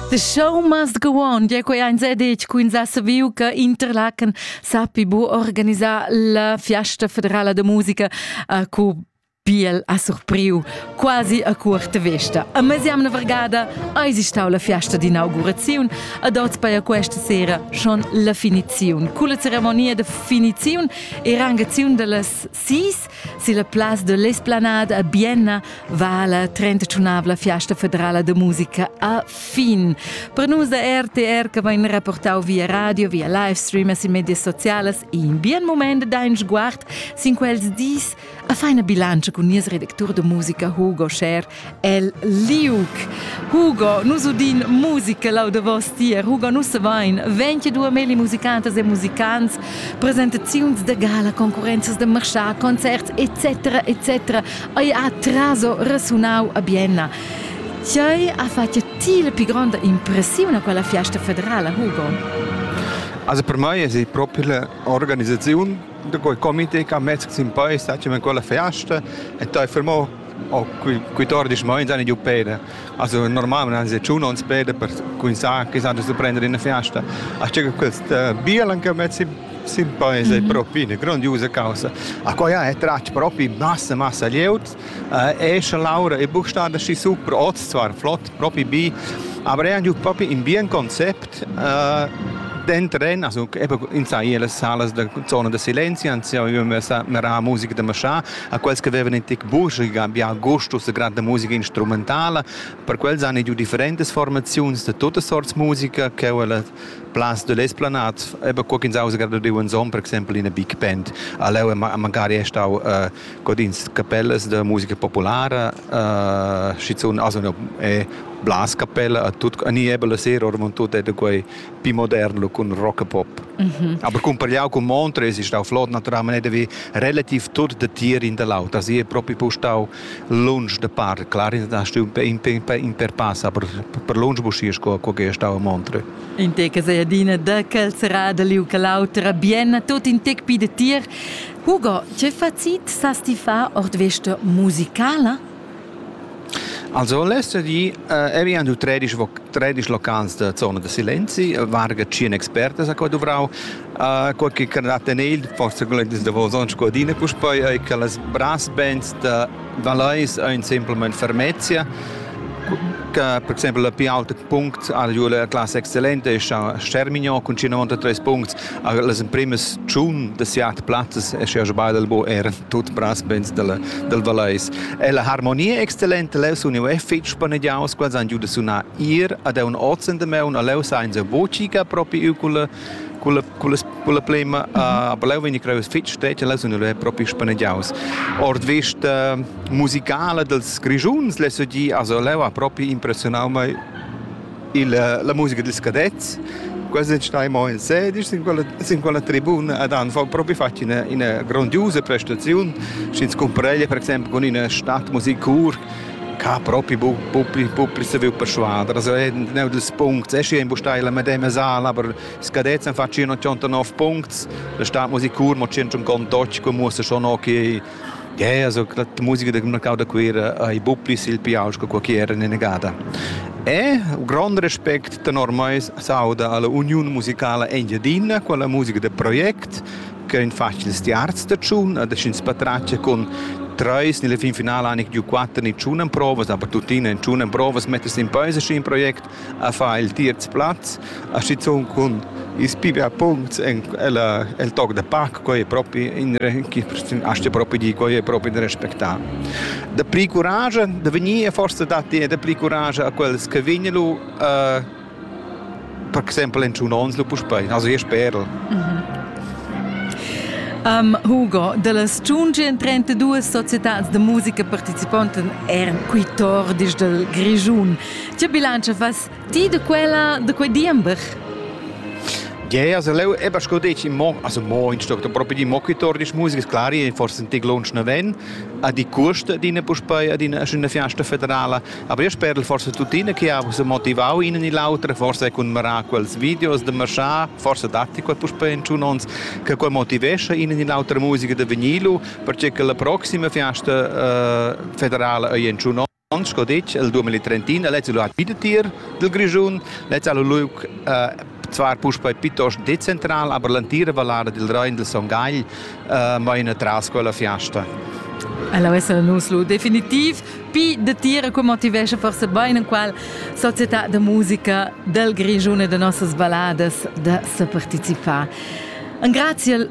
The show must go on. Gia quei ein sedetg cu ins ha saviu che Interlaken sappi bu organisar la fiasta federala de musica uh, cu Biel ha surpriu quasi a curta vesta. A mesiamna vargada eis stau la fiasta d'inauguraziun ad oz per questa sera schon la finiziun. Culla ceremonia de finiziun e rangaziun dallas Sis silla place de l'Esplanade a Bienna va la 31avla fiasta federala de musica a fin. Per nus da RTR che vain rapportau via radio, via live streamers in medias sociales, in bien moment dein sguard sin quels dis a feina bilancia cun nies redactur de musica Hugo Scher el liuc. Hugo, nus udin musica lau de vos tier. Hugo, nus vain 22 meli musicantas e musicants, presentaziuns de gala, concorrenzas de marchar, concerts, etc. etc. Ei ha traso resunau a Bienna. Tiai ha fatto ti la più grande impressione a quella fiesta federale, Hugo? Also per me è proprio l'organizzazione di quel comité che ha messo in poi, stacciamo quella fiesta e poi fermò Oh, quei, quei tor disch mo, ins han giu peda. Also normal non han giu non peda per cuinzar che san su prender in fiasta. A che questa biel anche met si sim paese propi eine grandiose causa. A koja è trac propi massa massa lieut, esce Laura e buchstade si super oz zwar flott propi bi, aber è anche propi in bien concept den tren, also eben in sai alle Salas der Zone des Silenzi, anzi io messa mera musica de Maschà, a quels che vevan in tec buca bia gusto sa granda musica instrumentala, per quels han giu differentas formaziuns de totas sorts musica che ella place de l'esplanade, aber co ch'ins ausa grada diu ensom per exempel in big band. A leu è magari è stau uh, codins capellas de musica populara, uh, schizun also è blas capella a tut ni ebbe la sera ormon tut è de quei pi moderno cun rockapop. Mm -hmm. Aber cumpagliau cun Montre es stau flot naturalmente vi relativ tut de tier in da l'auter. Si è proprio postau lunch de par. Clar da stu in in per pass, aber per lunch buschies co co che stau a Montre. In te che sei adina de quel serada li u che l'autra bien tot in tec pi de tier. Hugo, che facit sa sti fa ord veste musicala? Also l'ester di e vi han du tredisch tredisch locals da zona da silenzi, varga tschien expertas a qua duvrau, quai che can dat en il, forse glendis davos ons co adina puspei, ei che las brass bands da Valeis ein semplamain fermezia, che per exempel la pli auta punct ha giu la classa excellente è Stermignon cun 50 tres puncts, las emprimas tschun da siat plazzas è sche beidel bo eran. tut brasbens dalla, dal Valeis. E la harmonia excellente leu sun jeu fitg spanegiaus, quels han giu da sunar ir ad un ozen de meu, a leu sain se vocica propi u culla culla culla culla plema, aber leu vegn creus fitg steccia, leu sun jeu propi spanegiaus. Ord vista musicala dels Grigiuns, lesse gi, also leu ha propi impressionau mei Il, la musica dils cadets, quasi nicht einmal in sedisch sin quella, sin quella tribuna ad han propi fatg ina, ina grandiosa prestaziun. Sch'ins cumpreglia per exempel con ina Stadtmusikkur che ha proprio popli saviu persuadere. Also è uno dei punti, è schi in bustai la medema sala, aber i cadets hanno fatto 189 punti, la Stadtmusikkur mo 128, come muss schon auch Gea, so la musica da marcau da Cuera ei buc pli sil piaus che qualche era inegada. E grond respect tenor mei s'auda alla Uniun musicala Engiadina con la musica da project che ein facils tiarz da tschun e da sch'ins patratgia con treis nella fin finala han giu quatter ni tschun emprovas, aber tuttina in tschun emprovas metters in peis a in project a far il tierz plaz, a schizun cun ils pibia puncts en ella, el toc de pac, quei è propi in aste propi di, quei è propi in respectà. De pli courage, de venire forse dati de pli courage a quels che vignelo uh, per esempio in un ons lo puspei, also je sperl. Mhm. Um, Hugo, delles 132 società de musica participanten er quitor dis del Grigiun. Tge bilantscha fas ti da quella, da quei diember? Yeah, also leu eben schon dich im Mo also mo in stock da proprio di mokitor di musica claro e forse senti lunch na ven a di cost dina puspei a dina schöne fiesta federala aber io spero forse tuttina che ha so motivau in ni l'autra forse con mara quels videos de marchar forse datti quel puspei in tun ons che quel motivescha in ni l'autra musica de venilu perché che la prossima fiesta eh, federala ei in tun Aunc sco detg, el 2031 ha lez il luat vidatier dil Grischun, lez ha lu liug eh, zvar puspei piuttost decentral, aber l'entira vallara dil Rein del Son Gagl eh, maina tras quella fiasta. Allora essere nus lu definitiv pi de tira che motivesce forse bene qual società de musica del Grischun e de nossas balladas de se participare. Un grazie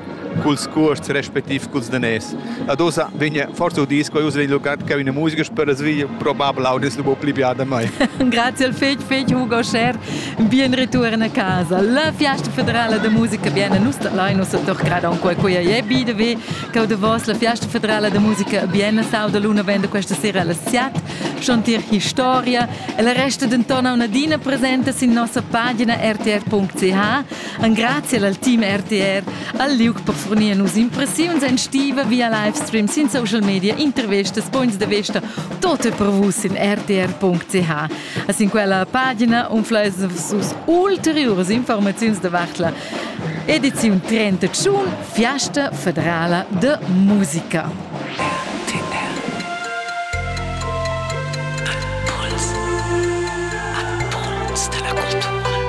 culs cuosts respectiv culs daners. Ad ussa vegna forsa udis quei uss il lugar che una musica spera sveglia probabel audis lu pli bia da mei. Grazie al fetg fetg Hugo Scher, bien return a casa. La Fiesta Federale de Musica bien nus da lai nus doch grada un quei quei e bi de ve che de vos la Fiesta Federale de Musica bien sau de luna vende questa sera alle 7 chantir historia e la resta denton una dina presenta sin nossa pagina rtr.ch Engrazia al team RTR al liug per fornir nus impressiuns en stiva via livestream sin social media, intervistas, punts da vista, tot è per vus in rtr.ch. A sin quella pagina unfleis sus ulteriuras informaziuns davart la ediziun 31 Fiasta federala de musica.